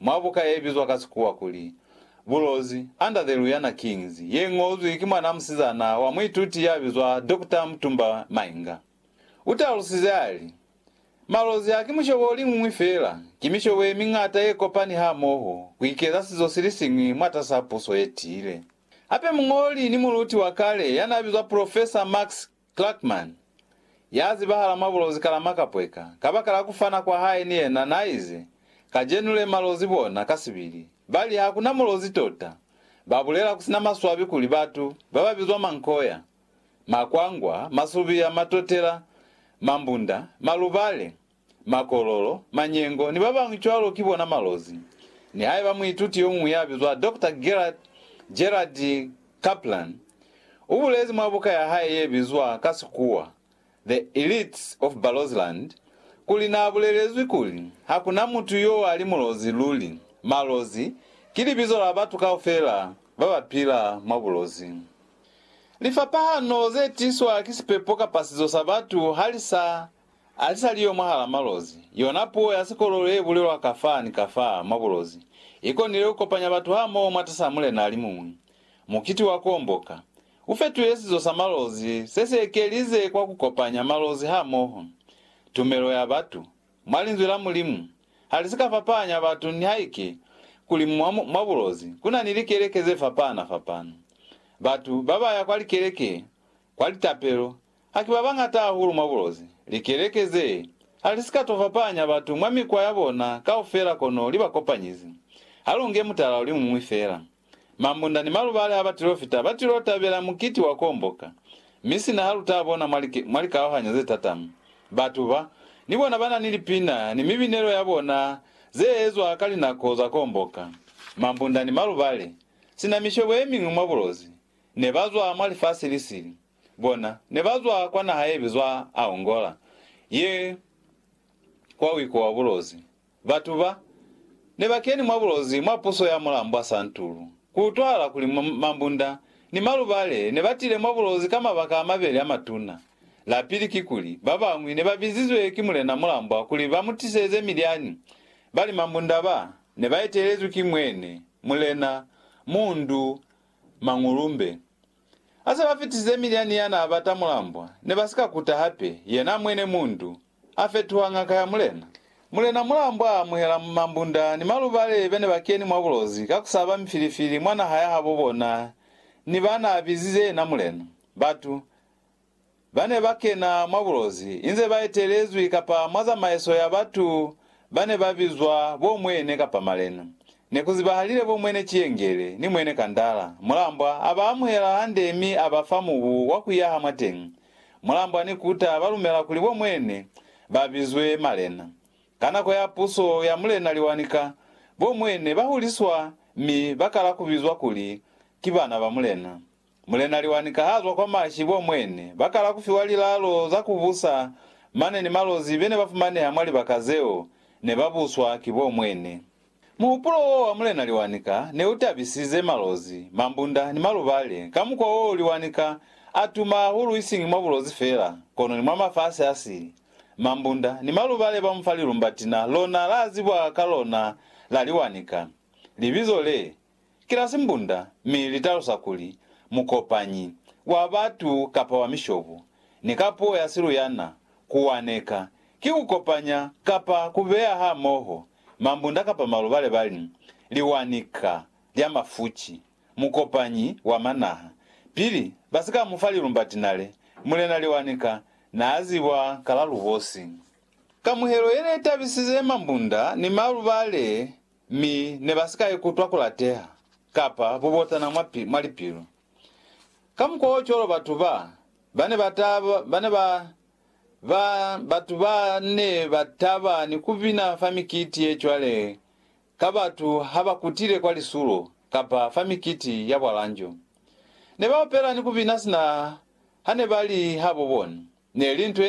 Mwa buka ye bizwa ka Sikuwa kuli, Bulozi, Under the Luyana Kings, ye ñozwi ki mwanaa musizana wa muituti ya bizwa Doctor Mutumba Mainga, u talusize a li, Malozi haki mushobo o liñwi feela, ki mishobo ye miñata ye kopani hamoho ku ikeza sizo si li siñwi mwatas'a puso ye tiile. Hape muñoli ni muluti wa kale ya n'a bizwa Profesa Max Clarkman, ya zibahala mwa bulozi kala makapweka, kabakala ku fana kwa hae ni yena, na ize, Kajenu le malozi bona, kasibili, ba li, Hakuna mulozi tota. Ba bulela kusina maswabi kuli batu, ba ba bizwa mankoya, makwangwa, masubiya, matotela, mambunda, malubale, makololo, manyengo, ni babañwi cwalo ki bona malozi. Nihaiba muituti yomuñwi yabizwa Doctor Gerhard, Gerard, Kaplan ubulezi mwa buka yahae yebizwa ka Sikuwa The Elites of Barozland kuli naabulelezwi kuli, Hakuna mutu yoali mulozi luli. Malozi ki libizo la batu kaufela babapila mwa bulozi. Lifapahano zetiswa ki sipepo kapa sizo sa batu halisa Alisaliyo mwahala malozi, yona puo ya sikololo ye bulelwa kafaa ni kafaa mwa bulozi i konile ku kopanya batu hamoho mwatas'a mulena alimuñwi. Mukiti wa Kuomboka u fetile sizo sa malozi se si ekelize kwa ku kopanya malozi hamoho. Tumelo ya batu mwa Linzwi la Mulimu ha li si ka fapahanya batu nihaike kuli mwa, mwa bulozi ku na ni likeleke ze fapahana-fapahana. Batu ba ba ya kwa likeleke Kwa litapelo, haki babañata hahulu mwa bulozi. Likeleke ze halisika to fapahanya batu mwa mikwa ya bona kaufela kono li ba kopanyizi. Halunge mutala uli muñwi fela. Mambunda ni malubali ha batilo fita batilo tabela mukiti wa kuomboka. Mi sina ha luta bona mwa mwa likaohanyo ze tatama, batu ba, ni bona bana ni lipina ni mibinelo ya bona ze ezwa ka linako za kuomboka. Mambunda ni malubali, sina mishobo yemiñwi mwa bulozi, Ne ba zwa mwa lifasi li sili. Bona, ne ba zwa kwa naha ye bizwa Aongola, ye kwa wiko wa bulozi. Batu ba, ne ba keni mwa bulozi mwa puso ya Mulambwa Santulu. Ku utwahala kuli mambunda ni malubale ne ba tile mwa bulozi ka mabaka a mabeli a matuna. La pili kikuli, ba bañwi ne ba bizizwe ki Mulena Mulambwa kuli ba mu tiseze milyani, bali mambunda ba, ne ba etelezwi ki Mwene, Mulena, Mundu, Mangulumbe. Ha se ba fitisize Midiani ya n'a bata mulambwa, ne ba si ka kuta hape, yena mwene mundu, a fetuha ngaka ya mulena. Mulena mulambwa a amuhela mambunda ni malubale be ne ba keni mwa bulozi ka ku saba mifilifili mwa naha ya habo bona ni ba n'a bizize yena mulena. Batu. ba ne ba kena mwa bulozi inze ba etelezwi kapa mwa zamaiso ya batu ba ne ba bizwa bo Mwene kapa Malena. Ne ku zibahalile bo Mwene Ciyengele ni Mwene Kandala. Mulambwa a ba amuhela hande mi a ba fa mubu wa ku yaha mwateñi. Mulambwa ni Kuta ba lumela kuli bo Mwene ba bizwe Malena. Ka nako ya puso ya Mulena Liwanika, bo Mwene ba huliswa mi ba kala ku bizwa kuli ki bana ba Mulena. Mulena Liwanika ha zwa kwa mashi bo mwene ba kala ku fiwa lilalo za ku busa mane ni malozi be ne ba fumaneha mwa libaka zeo ne ba buswa ki bo mwene. Muhupulo wo wa Mulena Liwanika ne u tabisize malozi, mambunda ni malubale ka mukwa wo Liwanika a tuma hahulu isiñi mwa bulozi fela kono ni mwa mafasi a si. Mambunda ni malubale ba mu fa lilumbatina lona la zibwa ka lona la Liwanika. Libizo le, ki la simbunda mi li talusa kuli mukopanyi wa batu kapa wa mishobo, ni ka puo ya siluyana, ku waneka, ki ku kopanya kapa ku beya hamoho mambunda kapa malubale ba li, liwanika lya mafuci, mukopanyi wa manaha. Pili ba si ka mu fa lilumba tinale, Mulena Liwanika n'a zibwa ka la lubosi. Kamuhelo ye ne tabisize mambunda ni malubale Mi ne ba si ka ikutwa ku lateha kapa bubotana mwa, mwa lipilu. Kamukwaocwalo batu ba, ba ne ba ta, ba ne ba, ba, batu ba ne ba taba ni ku bina fa mikiti ye cwale ka batu ha ba kutile kwa lisulo kapa fa mikiti ya bwalanjo. Ne ba opela ni ku bina sina ha ne ba li habo bona. Ne li nto ye